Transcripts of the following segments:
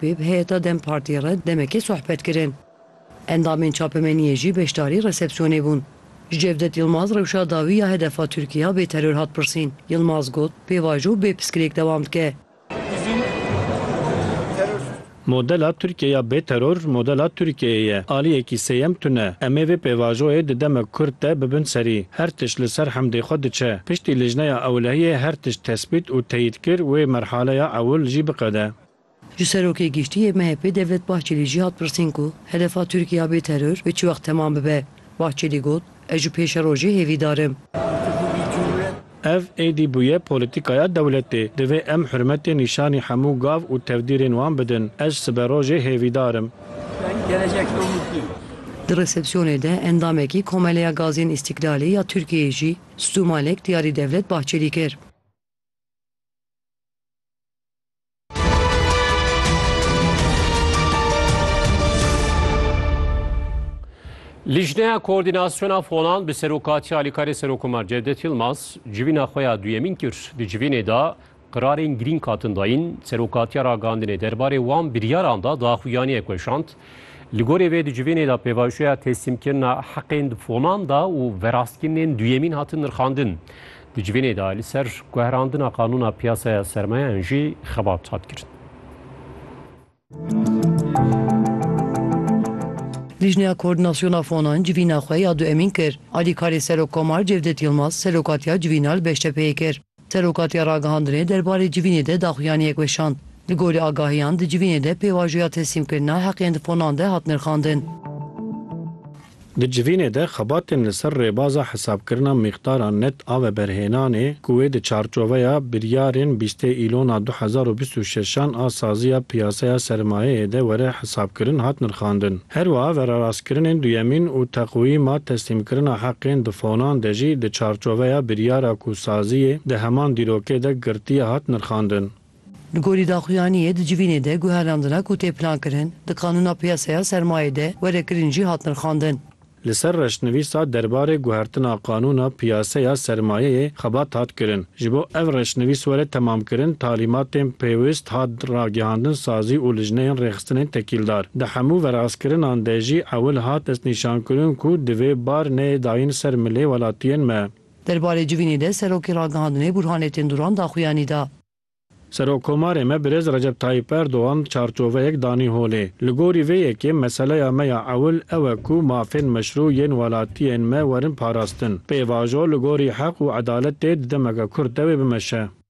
Wê bi heyeta dem Partî re demekê sohbet kirin. Endamên çapemeniyê jî beşdarî resepsiyonê bûn. Ji Cevdet Yilmaz rewşa dawî ya hedefa Tirkiya bê teror hat pirsîn. Yilmaz got, Pêvajo û bê piskirêk dewam dike. Modela Tirkiye ya bê teror modela Tirkiyeyê ye. Aliyekî sêyem tune. Em ê vê pêvajoyê di demek kurt de bibin serî. Her tişt li ser hemdê xwe diçe. Piştî lijneya ewlehiyê her tişt tesbît û teyîd kir wê merhaleya ewil jî biqede. Ji Serokê Giştî yê MHP'ê Devlet Bahçelî jî hat pirsîn ku hedefa Tirkiye bê teror bi çi wext temam bibe. Bahçelî got, Ez ji pêşerojê hêvîdar im. Ev êdî bûye polîtîkaya dewletê. Divê em hurmetê nîşanî hemû gav û tevdîrên wan bidin. Ez siberojê hêvîdar im. Di resepsiyonê de endamekî Komeleya Gazên Îstîklalê ya Tirkiyeyê jî stûmalek diyarî Devlet Bahçelî kir. Lijneya Koordînasyona Fonan bi serokatiya Alîkarê Serokomar Cevdet Yilmaz civîna xwe ya duyemîn kir. Di civînê de qirarên girîng hatin dayîn. Serokatiya ragihandinê derbarê wan biryaran de daxuyaniyek weşand. Li gorî vê di civînê de pêvajoya teslîmkirina heqên di fonan de û verastkirinên duyemîn hatin nirxandin. Di civînê de li ser guherandina qanûna piyasaya sermayeyan jî xebat hat kirin. Lijneya Koordinasyona Fonan civîna xwe ya duemîn kir. Alîkarê Serokkomar Cevdet Yilmaz serokatiya civîna li Beştepeyê kir. Serokatiya Ragihandinê derbarê civînê de daxuyaniyek weşand. Li gorî agahiyan di civînê de pêvajoya teslîmkirina heqên di fonan de hat nirxandin. Di civînê de xebatên li ser rêbaza hesabkirina mîqdara net a veberhênanê ku wê di çarçoveya biryarên bîstê îlona du hezar û bîst û şeş an a saziya piyaseya sermayeyê de were hesabkirin hat nirxandin. Herwiha verarastkirinên duyemîn û teqwîma teslîmkirina heqên bi fonan de jî di çarçoveya biryara ku saziyê di heman dîrokê de girtiye hat nirxandin. Li gorî daxuyaniyê di civînê de guherandina ku tê plankirin, di qanûna piyasaya sermayê de were kirin jî hat nirxandin. Li ser reşnivîsa derbarê guhertina qanûna piyasaya sermayeyê xebat hat kirin. Ji bo ev reşnivîs were temamkirin, talîmatên pêwist hat ragihandin sazî û lijneyên rêxistinên tekîldar. Di hemû veraskirinan de jî ewil hat destnîşankirin ku divê bar neyê dayîn ser milê welatiyên me. Derbarê civînê de Serokê Ragihandinê Burhanê Tênduran daxuyanî da. Serokkomarê me Birêz Recep Tayyîp Erdogan çarçoveyek danî holê. Li gorî vê yekê meseleya me ya ewil ew e ku mafên meşrû yên welatiyên me werin parastin. Pêvajo li gorî heq û edaletê di demeke kurt de wê bimeşe.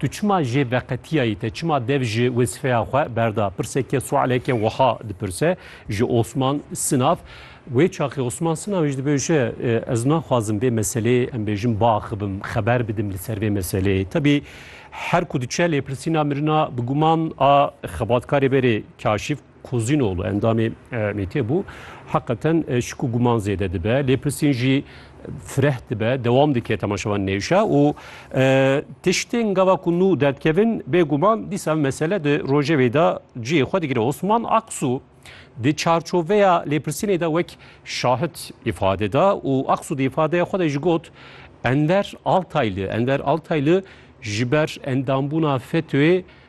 Tu çima jê veqetiyayî te, çima dev ji wezîfeya xwe berda? Pirseke sualeke wiha dipirse ji Osman Sinav. Wê çaxê Osman Sinav jî dibe wişe ez naxwazim vê meseleyê em bêjin biaxivim, xeber bidim li ser vê meseleyê. Tebî her ku diçe lêpirsîna mirina bi guman a xebatkarê berê kaşîf Kozînoglû endamê MHP'ê bû. Heqeten şik û guman zêde dibe. Lêpirsîn jî fireh dibe, dewam dike temaşevan nêşa û tiştên gava ku nû derdikevin bêguman dîsa mesele di rojevê de cihê xwe digire. Osman Aksu di çarçoveya lêpirsînê de wek şahid îfade da û Aksu di îfadeya xwe de jî got Enver Altayli Enver Altayli ji ber endambûna FETÖ'ê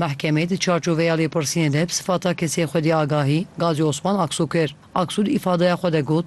Mehkemê di çarçoveya lêpirsînê de bi sifata kesê xwedî agahî Gazî Osman Aksu kir. Aksu di îfadeya xwe de got,